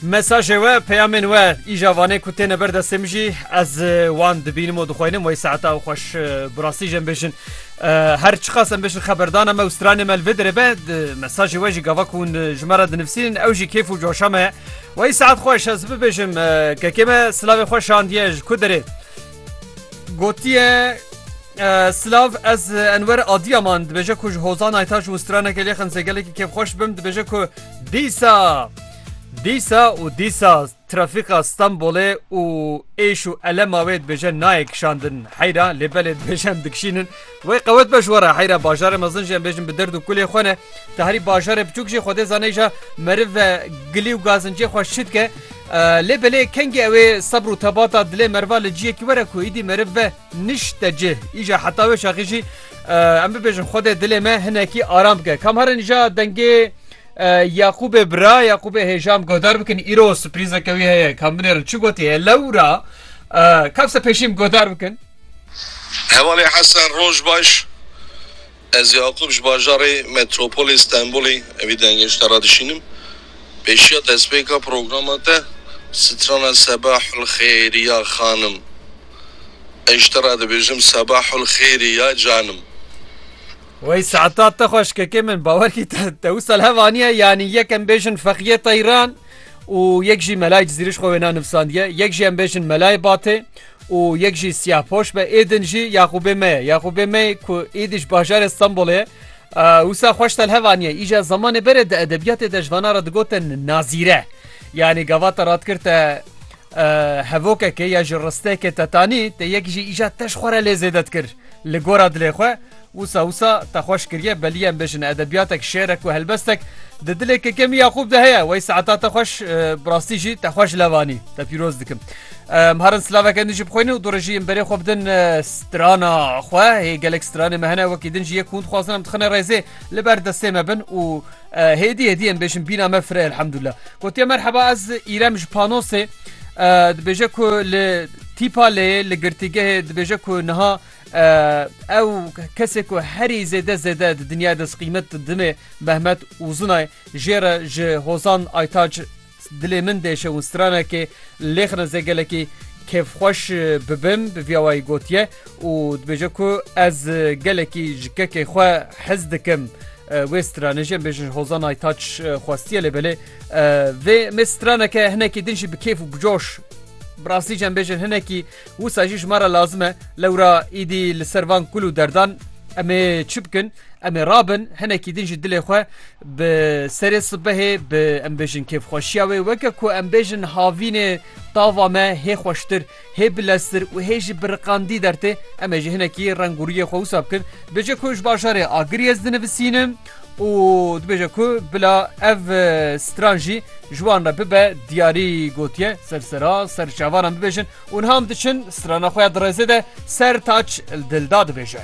Mesajê we, peyamên we îja vanê ku têne ber destê min jî ez wan dibînim û dixwînim wey saeta û xweş bi rastî jî em bêjin her çiqas em bêjin xeberdana me û stranê me li vê derê be mesajê we jî gava ku hûn ji me re dinivîsînin ew jî kêf û coşa me wey saet xweş ez bibêjim kekê me silavê xwe şandiye ji ku derê Gotiye Silav ez Enwer Adiyaman dibêje ku ji hozan ayta ji stranekê lê xemse gelekî kêfxweş bim dibêje ku dîsa dîsa û dîsa trafîka Stenbolê û êş û elema wê dibêje nayê kişandin heyra lê belê dibêje em dikişînin Wey qewet be ji we re heyra bajarê mezin jî em bêjin bi derd û kulê xwe ne. Te herî bajarê biçûk jî Xwedê zane îja meriv ve gilî û gazincê xwe şî dike. Lê belê kengî ew ê sebr û tebata dilê meriva li ciyekî were ku îdî meriv ve nişte cih. Îja heta wê şaxî jî em bibêjin Xwedê dilê me hinekî aram bike. Kam herin îja dengê Yaqûbê bira Yaqûbê hêjam godar bikin îro siprîzeke wî heye kam binêrin çi gotiye lewra kevse pêşîm godar bikin. Hevalê Hesen Roj baş. Ez Yakup ji bajarê Metropolê Stenbolê vî dengêşta re dişînim. Pêşiya destpêka programa te strana Sebahul Xêrî ya Xanim. Ej te re dibêjim Sebahul Xêrî ya Canim. Wey saeta te xweş kekê min bawer kî te wisal hev aniye yanî yek em bêjin feqiyê teyran û yek jî melayê cizîrij xwe wêna nivsandiye yek jî em bêjin melayê batê Û yek jî siyahpoş be êdin jî Yaqûbê me ye. Yaqûbê me ku êdî ji bajarê Stenbolê ye. Wisa xweş telhev aniye. Îja zemanê berê di edebiyatê de ji vana re digotin nazîre. Yanî gava te radikir te hevokekê ya ji ristekê te tanî te yek jî îja te ji xwe re lê zêde dikir li gora dilê xwe. Wisa wisa te xweş kiriye belî em bêjin edebiyatek, şêrek û helbestek di dilê Kekem Yaqûb de heye. Wey saeta te xweş bi rastî jî te xweş levanî. Te pîroz dikim. Em harin silaveke din jî bixwînin û dorê jî em berê xwe bidin strana xwe. Hê gelek stranê me hene wekî din jî yek hûn dixwazin em dixine rêzê li ber destê me bin û hêdî hêdî em bêjin bîna me fire elhamdullah. Gotiye merheba ez îrem ji panosê dibêje ku li tîpa lê li girtîgehê dibêje ku niha Ew kesê ku herî zêde zêde di dinya de qîmet didimê Mehmet Uzunay jê re ji Hozan Aytac dilê min dêşe û stranekê lêxin ez ê gelekî kêfxweş bibim bi vîya wayî gotiye û dibêje ku ez gelekî ji kekê xwe hez dikim. Wê stranê jê bêjin Hozan Aytac xwestiye lê belê vê me straneke hinekî din jî bi kêf û bicoş. Birastî cem bêjin hinekî Wisa jî ji me re lazim e lewra îdî li ser van kul û derdan em ê çi bikin? Em ê rabin hinekî din ji dilê xwe bi serê sibehê bi em bêjin kêfxweşiya wê weke ku em bêjin havînê tava me hê xweştir, hê bileztir û hê jî biriqandî dertê. Em ê jî hinekî rengûriyê xwe wisa bikin. Bêje ku ji bajarê Agiriyê ez dinivisînim. û dibêje ku bila ev stran jî ji wan re bibe diyarî gotiye ser sera ser çavanan bibêjin û niha em diçin strana xwe ya di rêzê de ser taç dil da dibêje.